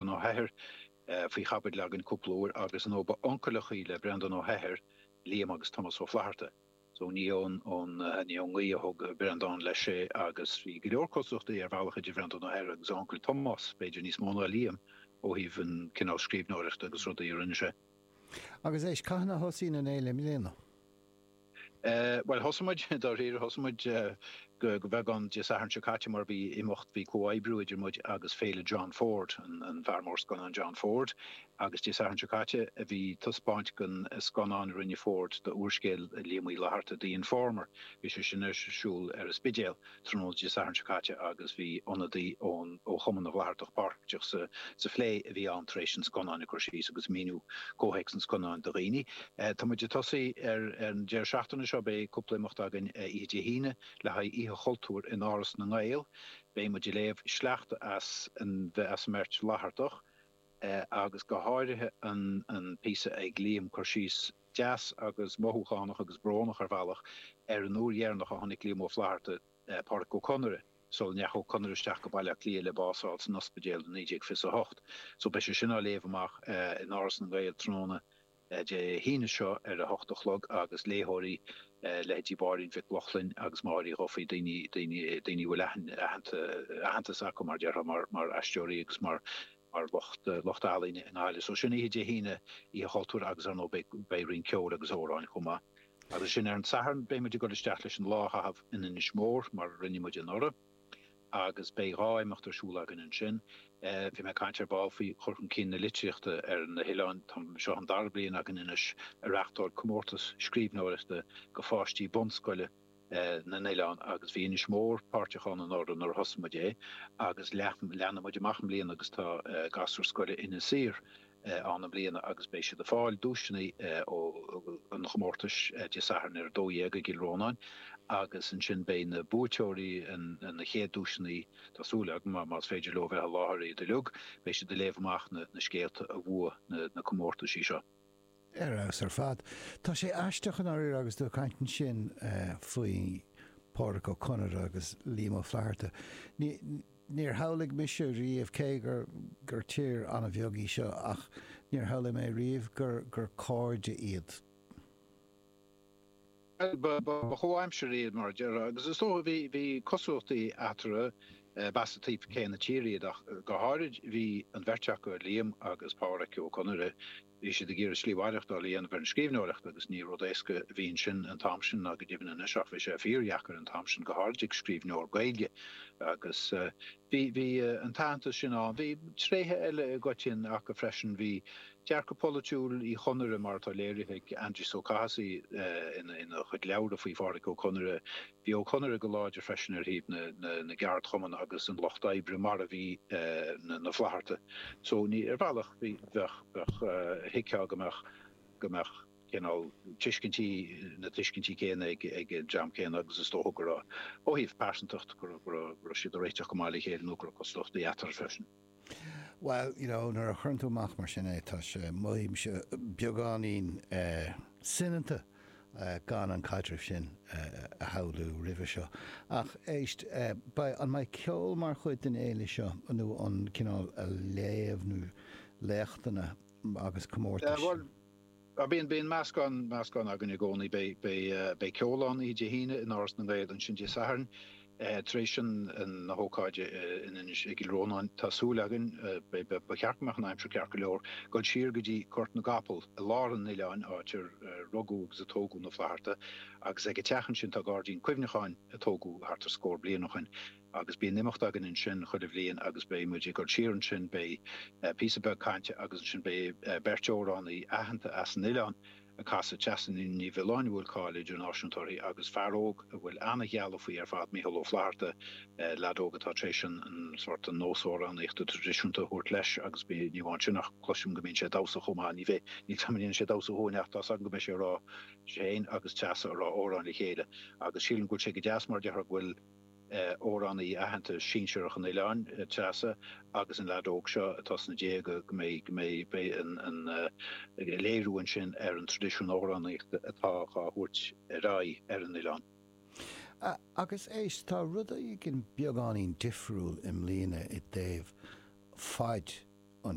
Breandán Ó hEithir faoi chaibidil againn cúpla uair agus ar ndóigh ba uncail ar ndóigh le Breandán Ó hEithir Liam agus Tomás Ó Flaithearta. So ní ón ngaoth a thug Breandán leis é agus bhí go leor cosúlachtaí ar bhealach idir Breandán Ó hEithir agus a uncail Tomás, b'fhéidir níos mó ná Liam ó thaobh an cineál scríbhneoireachta agus rudaí a rinne sé. Agus anois, cathain a thosaíonn an fhéile i mbliana? Eh, bhuel, thosaigh muid, dáiríre, thosaigh muid go beagán Dé Sathairn seo caite mar bhí imeacht, bhí comhoibriú idir muid agus Féile John Ford, an fear mór scannán John Ford, agus Dé Sathairn seo caite bhí taispeáint den scannán a rinne Ford d'úrscéal Liam Uí Fhlaithearta, The Informer, bhí sé sin ar siúl ar an Spidéal. tráthnóna Dé Sathairn seo caite agus bhí ionadaí ón ó Chumann na bhFlaitheartach páirteach sa sa phlé a bhí ann tar éis an scannáin ag cur síos agus míniú comhthéacs an scannáin do dhaoine. Tá muid ag tosaí ar ar an deireadh seachtaine seo beidh cúpla imeacht againn oíche Dé hAoine le haghaidh Oíche Chultúir in Áras na nGael. Beidh muid ag léamh sleachta as an as an mbeirt Fhlaitheartach agus go háirithe an an píosa ag Liam, cur síos deas agus mothúchánach agus brónach ar bhealach ar an uair dheireanach a chonaic Liam Ó Flaithearta Pádraic Ó Conaire, sula ndeachaigh Ó Conaire isteach go Baile Átha Cliath le bás a fháil san ospidéal i 1928. So beidh sé sin á léamh amach in Áras na nGael tráthnóna Dé hAoine seo ar a hocht a chlog agus léitheoirí, leithéidí Mháirín Mhic Lochlainn agus Mháire Uí Dhufaigh, daoine a bhfuil aitheantas acu, mar a déarfá, mar aisteoirí agus mar. mar lucht lucht ealaíne i nGaillimh. So sin oíche Dé hAoine, Oíche Chultúir agus ar ndóigh beidh beidh roinnt ceoil agus amhráin chomh maith. Agus ansin ar an Satharn beidh muid ag dul isteach leis an lá a chaitheamh in Inis Mór mar a rinne muid anuraidh agus beidh dhá imeacht ar siúl againn ansin. Bhí mé ag caint ar ball faoi chur chun cinn na litríochta ar na hoileáin. Tá seo an dara bliain againn anois ag reachtáil comórtas scríbhneoireachta go pháistí bunscoile. na nOileán agus bhí Inis Mór páirteach ann anuraidh nuair a thosaigh muid é agus leathnaigh muid amach é i mbliana agus tá gasúir scoile Inis Oírr ann i mbliana agus beidh siad ag fáil duaiseanna ón gcomórtas Dé Sathairn ar a 12:00 i gCill Rónáin agus ansin beidh na buaiteoirí na chéad duaiseanna tá súil agam más féidir leo bheith i láthair iad uilig beidh siad ag léamh amach na scéalta a bhuaigh na comórtaisí seo. ar fheabhas ar fad. Tá sé aisteach, i ndáiríre, agus tú ag caint ansin faoi Phádraic Ó Conaire agus Liam Ó Flaithearta. Níor shamhlaigh mise riamh, cé gur tír an-bheag í seo, ach níor shamhlaigh mé riamh gur cairde iad. Bhuel, ba chomhaimsirigh iad, mar a déarfá, agus is dócha bhí, bhí cosúlachtaí eatarthu. B'as an taobh céanna tíre iad, ach go háirid bhí an bheirt acu, Liam agus Pádhraic Ó Conaire, Bhí siad ag iarraidh slí mhaireachtáil a dhéanamh ar an scríbhneoireacht agus ní rud éasca a bhí ansin an t-am sin ná go deimhin anois ach bhí sé fíordheacair an t-am sin go háirid ag scríbhneoir Gaeilge agus bhí, bhí an t-aitheantas sin ann. Bhí tréithe eile i gcoitiann acu freisin. Bhí dearcadh polaitiúil Uí Chonaire mar atá léirithe ag Aindrias Ó Cathasaigh ina chuid leabhra faoi Phádhraic Ó Conaire, Bhí Ó Conaire go láidir freisin ar thaobh na gceardchumann agus an lucht oibre, mar a bhí na Flatharta. So, ní, ar bhealach, bheadh, bheadh, thuigfeá go mbeadh, go mbeadh cineál tuiscintí, na tuiscintí céanna ag an dream céanna agus is dócha go raibh, ó thaobh pearsantacht, go raibh, go raibh, go raibh siad ag réiteach go maith le chéile nó go raibh cosúlachtaí eatarthu freisin. Bhuel, you know, nuair a chuireann tú amach mar sin é, tá sé, mothaímse beagáinín soineanta gan an caidreamh sin a shamhlú roimhe seo. Ach éist, beidh, an mbeidh ceol mar chuid den fhéile seo nó an cineál léamha, léachtanna agus comórtais? Ah bíonn, bíonn meascán, meascán againn i gcónaí. Beidh, beidh, beidh ceol ann oíche Dé hAoine in Áras na nGael, ansin Dé Sathairn, tar éis an, an, na hócáide in Inis, i gCill Rónáin, tá súil againn, beidh, beidh, ba cheart go mbeadh an aimsir ceart go leor, gul siar go dtí Gort na gCapall i lár an oileáin, áit ar rugadh agus a tógadh na Flatharta agus ag a teach ansin tá gairdín cuimhneacháin a tógadh thart ar scór bliain ó shin. agus bíonn imeacht againn ansin chuile bhliain agus beidh muid ag gul siar ansin, beidh píosa beag cainte agus ansin beidh beirt amhránaí aitheanta as an oileán ag casadh, Treasa Ní Mhiolláin a bhfuil cáil idirnáisiúnta uirthi agus fear óg a bhfuil ana-ghealladh faoi ar fad, Micheál Ó Flaithearta, leaid óg atá tar éis an sórt, an nós amhránaíochta traidisiúnta a thabhairt leis agus ní amháin sin ach cloisim go mbíonn sé ag damhsa chomh maith, ní bheidh, níl 's a'm an ndéanfaidh sé damhsa dhúinn ach tá's agam go mbeidh sé ag rá, sé fhéin agus Treasa ag rá amhráin le chéile agus sílim go bhfuil sé go deas mar déarfá go bhfuil amhránaí aitheanta sinsearach an oileáin, Treasa, agus an leaid óg seo atá sna déaga, go mbeidh, go mbeidh an léiriú ansin ar an traidisiún amhránaíochta atá dhá thabhairt ar aghaidh ar an oileán. Agus éist, tá rud eicínt beagáinín difriúil i mbliana i dtaobh faid an